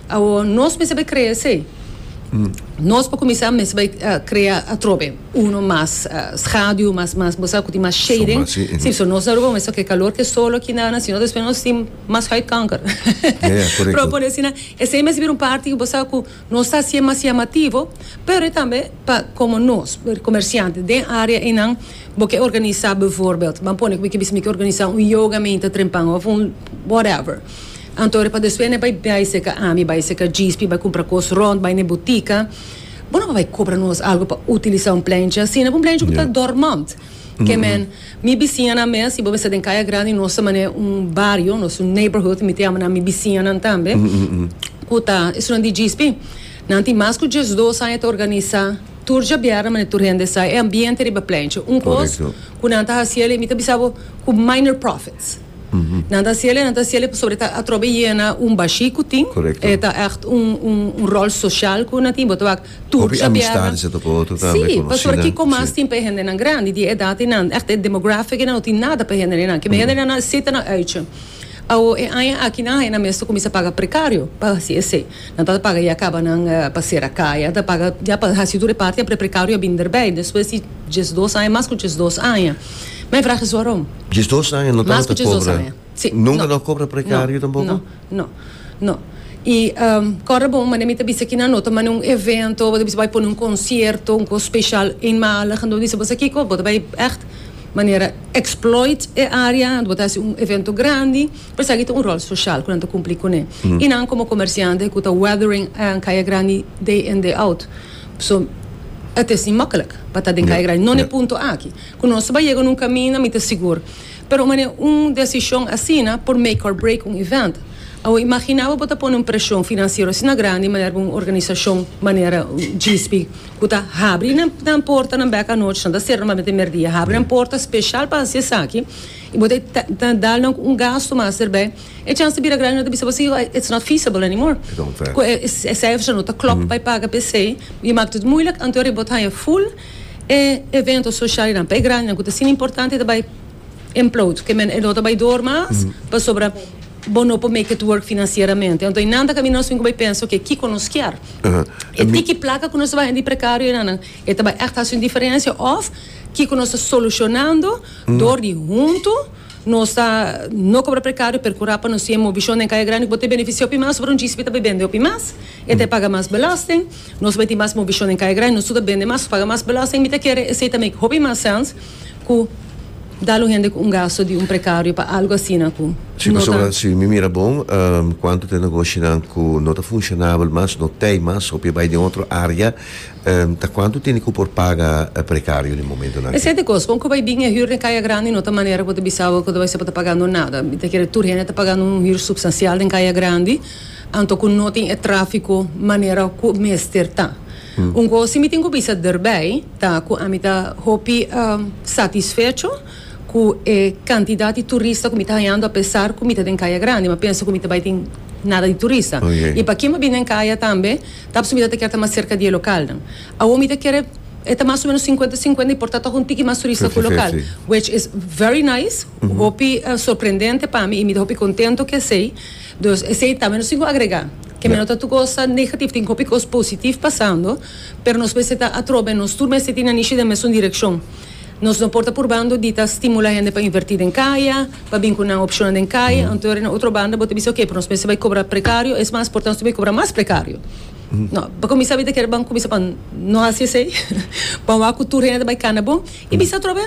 Awor, nos mester bai krea esei. Nos pa kuminsá mester bai krea atrobe uno mas schaduw, mas mas bo sa ku tin mas shading. Sombra, si. Nos Aruba mester ke kalor ke solo aki nan nan sino despues nos tin mas huidkanker. Ya, ya, korekto. Por pone asina, esei mester bira un parti ku bo sa ku nos ta hasié mas yamativo, pero tambe pa komo nos komersiante den área einan bo ke organisá bivoorbeeld, ban pone ku bo ke bisa mi ke organisá un yoga mi ta trempan òf un whatever. Anto ora pa despues ne bai bai seka ami, bai seka Gispi, bai cumpra cos rond, bai ne butica. Bo no a bai cobra nos algo pa utilisa un plencha asina, pa un plencha cu ta dormant. Ke men, mi bisiñanan mes, si bo bisa den Caya Grandi nos ta mane un bario, nos un neighborhood, mi ta yama nan mi bisiñanan tambe, cu ta estudian di Gispi. Nan tin mas cu diesdos aña ta organisa tur djabièrnè mane tur hende sa e ambiente riba plencha. Un cos cu nan ta haci aley, mi ta bisa bo cu minor profits. Nan ta hasiel e nan ta hasiel e pasobra e ta atrobe yena un bashi ku tin. Korekto. E ta ègt un un un ròl soshal ku nan tin. Bo ta wak tur Hopi chapearnan. amistades e ta ku otro tambe, konosida. Si, pasobra kiko mas tin p'e hendenan grandi di e edat einan? Ègt e demografiki einan no tin nada p'e hende einan. Kibe hende einan a sita nan uitje. Awo e aña aki nan haña nan mes ta kuminsá paga prekario pa hasi esei. Nan tabata paga ya kaba nan pa sera kaya, nan ta paga ya pa hasi tur e parti, apre prekario a bin derbei despues di diesdos aña, mas ku diesdos aña. Mijn vraag is waarom? Djes dos aña no tabata cobra. Mas cu djes dos aña. Si. No. Nunca no a cobra precario tampoco? No. No. No. Y corda bo un manera mi ta bisa aki na no ta manda un evento, bo ta bisa bay pone un concierto, un cos special eenmalig en bo ta bisa boso kico? Bo ta bay echt manera exploit e area en bo ta haci un evento grandi pa esaki ta un rol social cu nan ta cumpli cune. Y nan como comerciante cu ta weathering Kaya Grandi day in day out. So, e ta esnan mokkelek pa ta den kaya grandi. Non e punto aki. Ku nos tabata yega na un kaminda, mi ta sigur. Pero mane un desishon asina por make or break un event. Awo, imagina bo bo ta pone un preshon finansiero asina grandi manera ku un organisashon manera GISP ku ta habri nan portanan bek anochi, nan ta sera normalmente merdia, habri nan porta speshal pa hasi esaki i bo ta dal nan un gastu mas derbei. E chans di bira grandi no ta bisa posible pa its not feasible anymore cu e cijfers no ta clop pa e paga pe esey y mak tot moeilijk anto ariba bo ta haya full e evento social y nan pa e grandi nan cu ta asina importante ta bay implode cu e no ta bay door mas pasobra bo no por make it work financieramente anto y nan ta camina nos tin cu bay pensa oke kico nos kier e tiki placa cu nos ta bay hende precario y nan nan e ta bay echt haci un diferencia of kico nos ta solucionando door di hunto. Nos ta no cobra precario pero cu rapa nos tiene mobichon den Caya Grande cu bo ta beneficia hopi mas ora un djispi ta bay bende hopi mas e ta paga mas belasting nos bay tin mas mobichon den Caya Grande nos tur ta bende mas nos paga mas belasting mi ta kere esey ta make hopi mas sens cu dal un hende cu un gasto di un precario pa algo asina cu Si pasobra si mi mira bon cuanto ta e negoshinan cu no ta funcionabel mas no tey mas hopi e bay den otro area Ta cuantu tene cu por paga e precario den momentonan aki? Esente cos, con cu bay bin e huur den Caya Grandi no ta manera cu bo ta bisa bo cu ta bay ser pa ta pagando nada. Mi ta kere tur hende ta pagando un huur substancial den Caya Grandi, anto cu no tin e trafico manera cu mester ta. Un cos si mi tin cu bisa derbij ta cu ami ta hopi satisfecho cu e cantidad di turista cu mi ta hayando apesar cu mi ta den Caya Grandi, mi a pensa cu mi ta bay tin nada di turista. Y pa ken bo bin den Caya tambe, Tabes mi ta te kier ta mas serka di e lokalnan. Awor mi ta kier e e ta mas o menos sinkuenta sinkuenta y por ta tog un tiki mas turista ku lokal. Which is very nice, hopi sorprendente pa mi y mi ta hopi kontento ku esei. Dus esei ta, mi no tin ku agrega. Ke mi no ta tuko sa negativ, tin hopi kos positiv pasando, pero nos mester ta atrobe nos tur mester tin na nishi den mesun direkshon. Nos no por ta purbando di ta stimula hende pa inverti den kaya, pa bin ku nan opshonnan den kaya, anto den e otro banda bo ta bisa oke, pero nos mester bai kobra prekario, es mas por ta nos ta bai kobra mas prekario. No, pa kuminsá mi ta kere ban kuminsá pa no hasi esei, pa wak ku tur hende ta bai kana bo i bisa atrobe,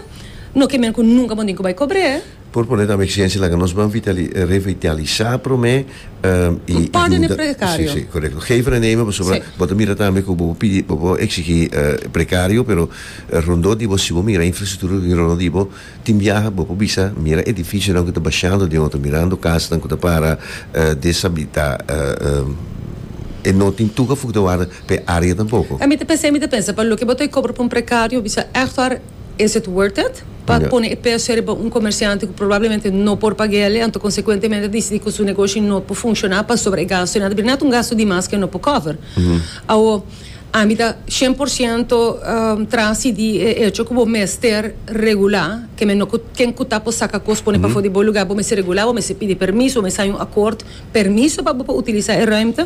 no ke men ku nunka bo tin ku bai kobr'é. Por pone tambe exigencia laga nos ban revitalisá promé i yuda si si korekto geven e neme pasobra bo ta mira tambe ku bo pidi bo por eksigí prekario pero rondó di bo si bo mira infrastruktura ku tin rondó di bo tin biaha bo por bisa mira edifisionan ku ta bashando den otro mirando kasanan ku ta para desabilitá e no tin tur afukta warda pa e área tampoko. Mi ta pensá mi ta pensa pa loke bo ta e kobra pa un prekario bisa èhtor. Is it worth it? Pa pone e peso riba un comerciante cu probablemente no por pagu'e ale, anto consecuentemente a dicidi cu su negoshi no por funciona pasobra e gasto na ta bira, na ta un gasto di mas cu e no por cover. Awo, ami ta cien por ciento trasi di e hecho cu bo mester regula, kende no cu ken cu ta por saca cos pone pafo di bo lugar, bo mester regula, bo mester pidi permiso, bo mester haña un acord, permiso pa bo por utiliza e ruimte.